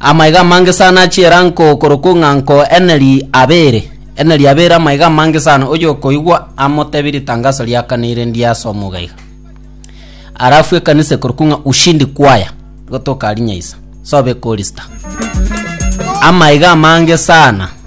Amaiga amange sana a chi'eranko korokwa ong'anko eneri abeere, eneri abeere amaiga amange sana, oyokoigwa amotebie ritangaso riakanire ndiye ase omouga iga. Arafu ekanisa ekorokwa ng'a Ushindi Choir, igo tokarinyaisa, sobe korista. Amaiga amange sana.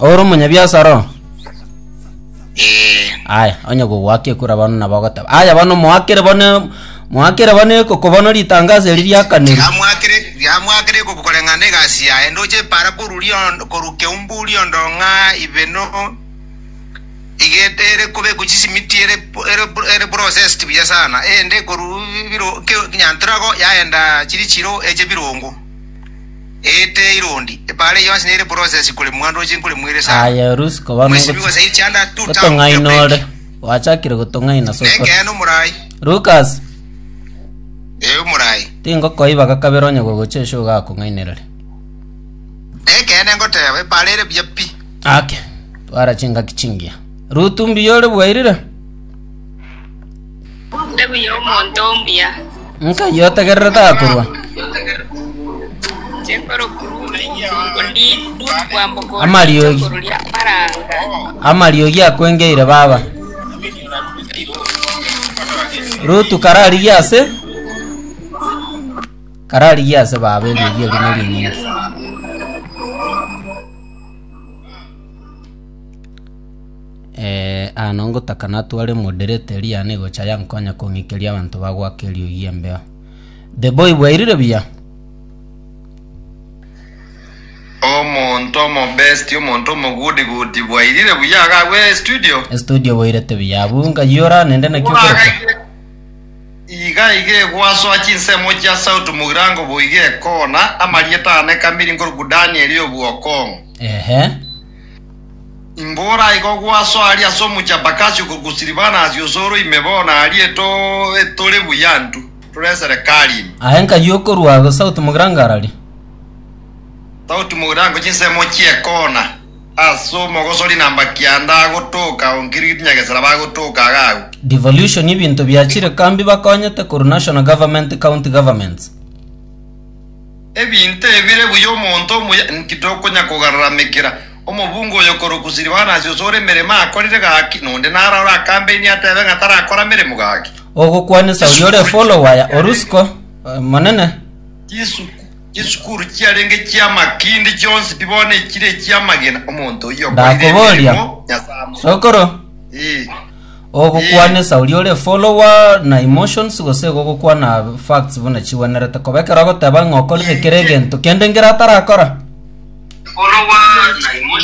Ore omonyabiasara oo? Eh, Aya, onye gogoaka ekura bono nabo ogoteba. Aya bono moakere bono moakere bono ekoko bono ritangazo eri riakaneri. tigamwakire tigamwakire ekuku koreng'ana egasi yaye ndoche epara koruria on- korwa keumburi ondong'a ibeno igete ere kobekwa chisimiti ere po- ere pro- ere processed buya sana ende korwa biro ke- nyantorago yaenda chiri chiro eche birongo Aye Rusi koba nogotong'aina ore, gwachakire gotong'aina ase okore. Lukas, tingokoiba gakabere onye gogocha esyo iga akong'ainerere. Ake, twara chingaki chingiya. Rutu mbuya ore bwairire? Mbegu y'omonto omuya. Nkai otegererete akorwa. Amariogi. Amariogi akwengeire baba. Rutu kararigie ase. Kararigie ase baba eriogi eri nerinyinge. Ee, aano ngotaka natware moderate eria yane gocha yankonya kong'ikeria abanto bagoaka eriogi embeo. The boy bwairire buya. Omonto omobesti, omonto omogudigudi bwairire buya iga agwo estudio. Estudio boirete buya abu ngayora nende naki okoroka. Iga iga egwasoa chinsemo chia sauti mogirango boiga ekona, amarieta ane kamiri nkoruku Danieli obwokong'u. Ehe. Imbora igo gwaso aria ase omochie Bakasi okogusiri bana asie osoro ime bono arie tore buya ntu tore eserekari ime. Aye nkayi okorwa ago sauti mogirango arari. Sauti mogirango chinsemo chi'ekona ase omogosori namba kianda agotoka onkiriri tinyagesera bagotoka iga agwo. Devolution ebinto biachire kambi bakonyete korwa national government county governments. Ebinto ebire buya omonto omuya inki tokonya kogaramekera? Omobunga oyo korokwa Silivanasi ose ore emeremo akorire gaki, na onde naro ore akambeinie atebe ng'a tarakora meremo gaki. Ogokwanisa oria ore folowaya o Rusiko, Omonene. Chisuku, chisukuru chiarenge chi'amakindi chionsi pi bono echire echi'amagena, omonto oyio okorire Ndakoboria, emeremo Nyasae amorokire. Sokoro, Ee. Ogokwanesa oria ore follower na emotions gose igo ogokwana facts buna chigwenerete koba ekero agoteba ng'a okorire kera egento kende ngera atarakora.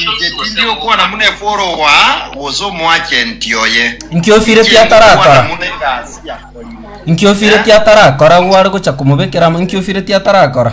Inche tindi okwana buna efolowa gose omoagenti oye. Inki ofireti Inche atarakora? ndikokwana buna egasi yakorire. Inki ofireti atarakora agwo are gocha komobekera amo inki ofireti atarakora?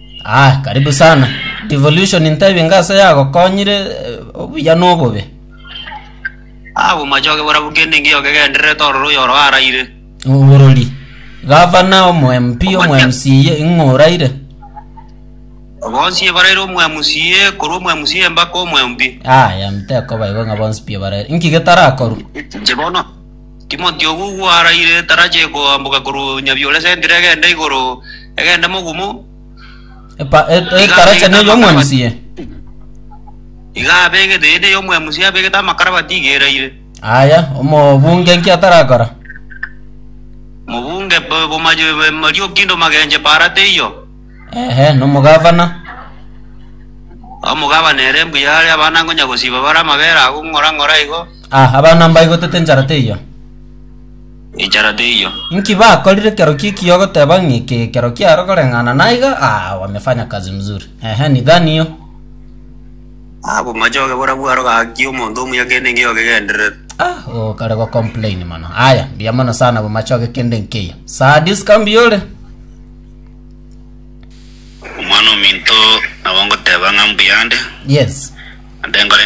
Ah, karibu sana. Devolution ntebie ngase yagokonyire eh, obuya na obobe. Abo machoge bora bukende ngiyo kegendererete ororo oyoro araire. Oborori. Gavana omo MP omo MCA ing'o oraire? Bonsi ebaraire omwemusie, korwa omwemusie mpaka omwempi. Aya mtekoba igo ng'a bonsi pi barere. Inki getarakorwa? Inche bono Timoti oyio gwaraire etarachi ekoamboka korwa Nyabiore Centre egenda igoro, egende mogumo, Epa- e- e- Iga Etarachi abegete neye amakara omwemusi ye. iga abegete ende y'omwemusi abegete amakarabati iga eraire. Aya, omobunge nki atarakora? Mobunge bo- bomayo- Mariokindo Magenche para teiyo, Ehe, nomogavana. omogabane ere mbuya are abana ngonya gosiba bare amabere agwo ng'ora ng'ora igo, Ah, abana mbaigotete enchara teiyo. Enchara teiyo. Inki bakorire kero ki ki ogoteba ng'i ke kero kiaro koreng'ana naiga? Ah, wamefanya kazi mzuri. Ehe, ni gani yo? Ah, bomachoge bora bwaro gaki omonto omuya kende nge ogegenderere. Ah, oh, kare go complain mono. Aya, mbuya mono sana bomachoge kende nkeyo. Saa this can be yore. Omwana ominto nabo ngoteba ng'a mbuyande, Yes. ande nkore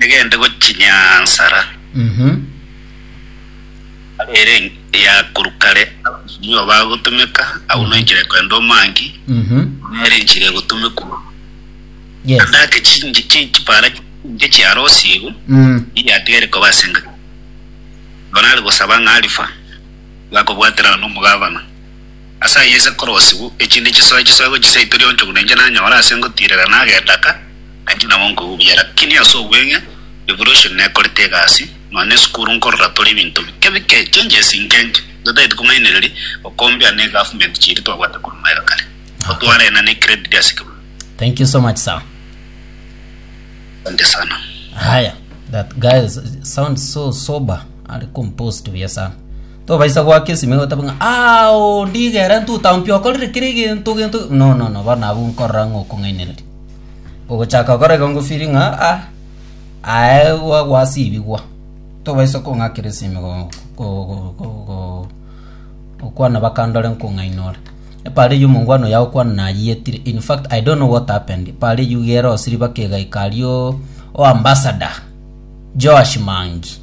Egende gochinyansara ere eyakorwa kare, abanto nigo bagotumeka, agwo noikire kwenda omangi, nere enchera egotumekwa. Yes. Ande ake chinji chi- chipara chinge chiarosi igo, Mm. iye atigere koba ase enga. Bonari gosaba ng'a arifa, bakobwatera nomogabana. Ase ayio inse nkorosiwu, echinde chisoe chisoe gochia seito rionchogu nainche nanyore ase ngotiirera nagendaka, nainche nabo nkogubiera. Lakini ase obweng'e, revolution nekorete egasi, nonya ne esukuru nkorora tore ebinto bike bike, changes inke inke. Ntotaeti komainereria gokombia ne government chiria twabwate korwa maega kare. Nabo twarena ne credit ase ekegutu. Thank you so much sir. Asante sana. Haya, that guy sounds so sober, ali composed buya sana. Tobaisa goaka esimi iga gotabe ng'a aa oo ndigera ntuta mpi okorire kera egento gento no no no bono abwo nkorora ng'a okong'ainereria. Ogochaka gokora igo ngofili ng'a aa aye gwa gwasibigwa tobaisa kong'akera esimi igo ko ko ko ko okwana bakandore nkong'aina ore. Epaara eywo omongwana oyo agokwana nayietire in fact I don't know what happened epaara eywo iga erosiri baka egaika ario oambassador Joash Mangi.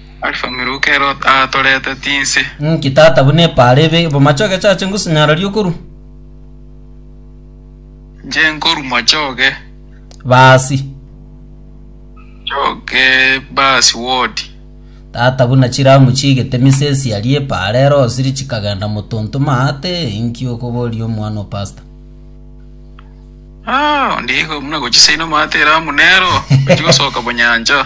Alfa Miruka ero atorete tinse. Nki tata buna epaara ebe bomache ogechache ngosinyaroria okorwa? Nche nkorwa moche oge. Baasi. Oge baasi wodi. Tata buna chiramu chiigete misesi aria epaara ero osiri chikagenda motonto maate inki okoboria omwana o pastor? Ah, ondigo buna gochisaina maate eramu nero ochi gosoka bonyancha.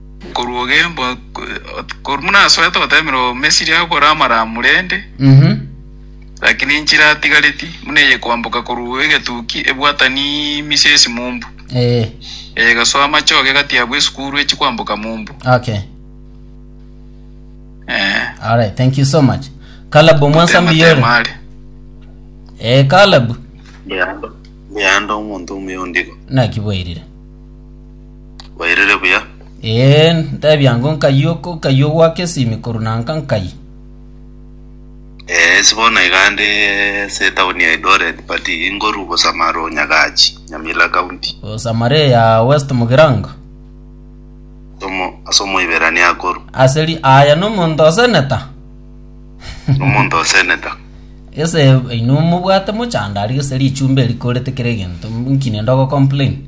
Nkoruogembwa, korwa buna asoete goteemerwa Omomisiri agokora amaramu rende, Mhm. lakini inche iratigareti, buna eye koamboka korwa egetuki ebwatani misia esimumbu, Eh, eye egasoa amachoge egati yabwo esukuru echi koamboka mumbu. okay. Eh, All right, thank you so much. Caleb omwansa mbiyore. Temare. Eh, Caleb, Leando, Leando omonto omuya ondigo. nakiboirire. Bairire buya. Ee, ntebia ng'o nkai oko, nkai ogoaka esimi korwa nanka nkai? Eh, ase bono iga ande ase etaoni ya Eldoret but ingorwa Bosamaro Nyagachi, Nyamira County. Bosamare ya West Mugirango. Somo ase omoiberania akoru. Aseri aya nomonto oseneta. Omonto oseneta. Ese ino mobwate mochandari ese richumba erikorete kere egento nkine ndogo complain.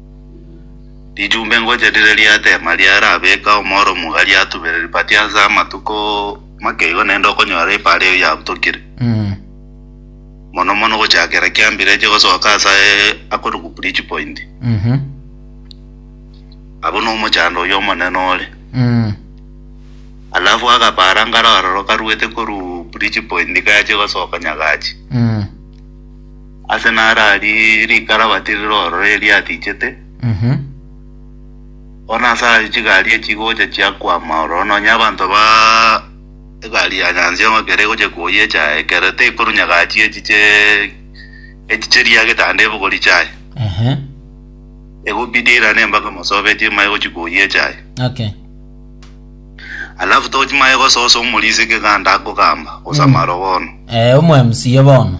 Rijumbe ngocha rire riatema riarabeka omoro omuga riatubera ribati ase amatuko make igo naende okonyora epaara eyio yabutokire. Mono mono gochakera kiambire eche gosoka ase akorokwa bridge point. Abwo nomochando oyio omonene ore. Alafu akapaara nkare aroro karuete korwa bridge point kache gosoka Nyagachi. Ase narari rikarabati riroro eria atichete, bono ase ayio chigari echigocha chiakwama ororo, nonya abanto ba egari ya nyansiongo ekero egochia koyecha ekero tekorunya gachi echiche echiche ria getanda ebogori chiaye, egobidi eirane mpaka mosobe echimare gochia koyecha aye. Okay. Alafu tochimanye gososa omorisia keganda akogamba gose amarogono. Eh, omo MC bono.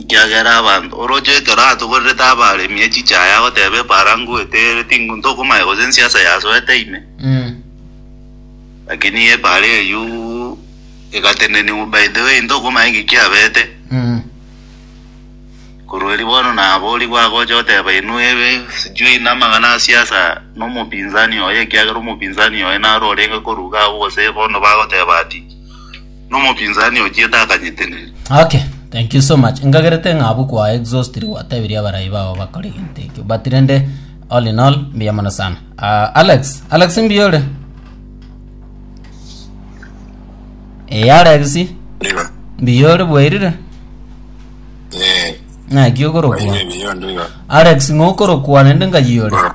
Ekiagera abanto oroche ekero atogorerete abaremi echichaya agoteba efarango etere ting'u ntokomanya gose ensiasa yasoete ime. Lakini efara eyio egateneniwa by the way ntokomanya nki kiabete. Korwa erio bono nabo oria gwagocha oteba inwe ebe sijui na amang'ana a siasa na omopinzani oye ekiagera omopinzani oye naro orenge korwa iga abwo gose bono bagoteba ati. Nomopinzani ochiete akanyetenena. Okay, thank you so much. Ngagerete ng'a abwo kwa exhaust ri gwatebirie abarai bao bakore gento ekio. But rende all in all mbuya mono sana. Uh, Alex, Alex mbuya ore? Eh, Alex, Ndiba. mbuya ore bwairire? Eh. Ng'aki okorokwa? Baye biyo ndiba. Alex ng'okorokwa rende ngayi ore? Bora.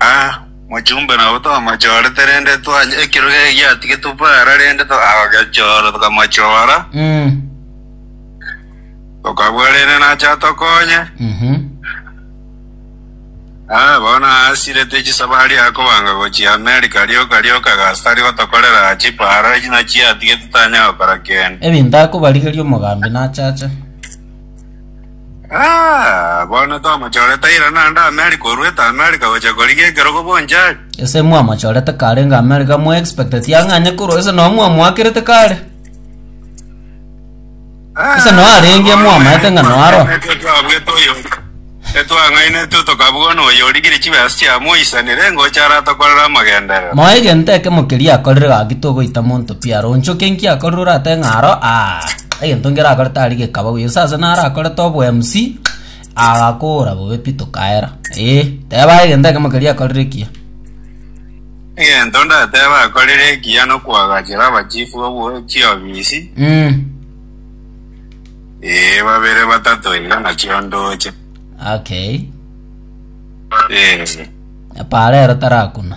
Aa, mochumbe nabo twamachorete, rende twanywa ekero geke giatigetwe para, rende togagechora, tokamachora, tokabua rende nache atokonye. Aa, bono aasirete chisabari akobanga gochia America, rioka rioka agasa tari gotokorera aa chipara, echi nachio atigete tanyara gokora kende. Ebinto akobarigeria omogambi nachache. Ah, bono twamochorete ira naende Amerika orwete Amerika gochia korigia ekerogo bonchari. Ese mwamochorete karenge Amerika mwa expect sia ang'anye korwa ase nao mwamoakerete kare. Ase no arenge mwamaete ng'a no aro. Twabwete oyo. Etwang'ainetwe tokabwana oyo origire chibesa chiamoisanire ngocha aratokorere amagenderero. Moa egento ekemo keria akorire gaki togoita monto Biaronchoke nki akorire orate ng'a aro aa egento nkere akore tari gekaba buya gose ase naro akorete obo MC agakora bobe pi tokaera ee teba egento ekemo keria akorire ekiya Egento ndateba akorire ekiya nokwagachera abachifu obwo chiofisi mm. ee babere batato iga nachio ndoche okay ee paro ero tarakuna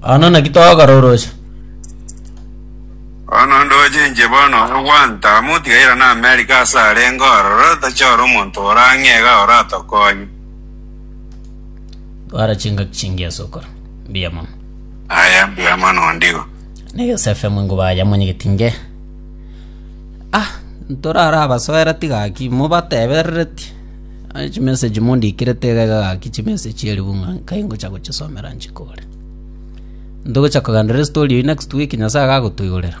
Bono naki tokororosha? Bono ndoche inche bono ore gwanta amo otigaire na Amerika ase arenge ororo tachore omonto ore ang'e iga oratokonye. Twara chingaki chingi ase okora. Mbuya mono. Aya mbuya mono ondigo. Negesa FM ingo baya monyegeti nge. Ah, ntorara abasoera tigaki mobateberereti. Aye chimessage mondikire tigaika gaki chimessage erio buna nkai ngocha gochisomera nchikore. Ntogocha kogandera estory eyi next week Nyasaye agagotoigorera.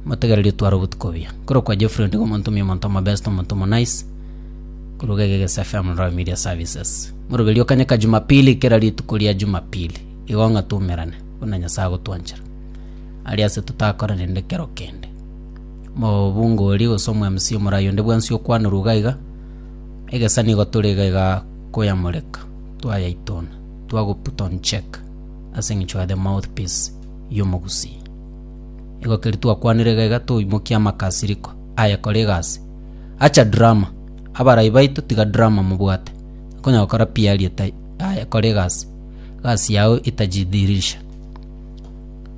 Motegererie tware obotuko buya. Koro kwa Jeffrey ndigo omonto omuya omonto omobest omonto omo nice. Koro gege gese FM Royal Media Services. Moroberio okanye ka Jumapili kera rituko ria Jumapili. Igo ng'a tumerane. Buna Nyasaye agotwanchera. Aria ase tutakorana rende kero kende. Omobungori gose omwemusi omorai onde bwensi okwanerwa iga iga, egesa nigo tore iga iga koyamoreka, twayaitona, twago put on check as eng'encho you are the mouthpiece y'omogusii. Igo keri twakwanire iga iga toimokia amakasiriko aye kora egasi. Acha drama, abarai baito tiga drama mobwate, okonya gokora piari etai aye kora egasi, egasi yago itajidhihirisha.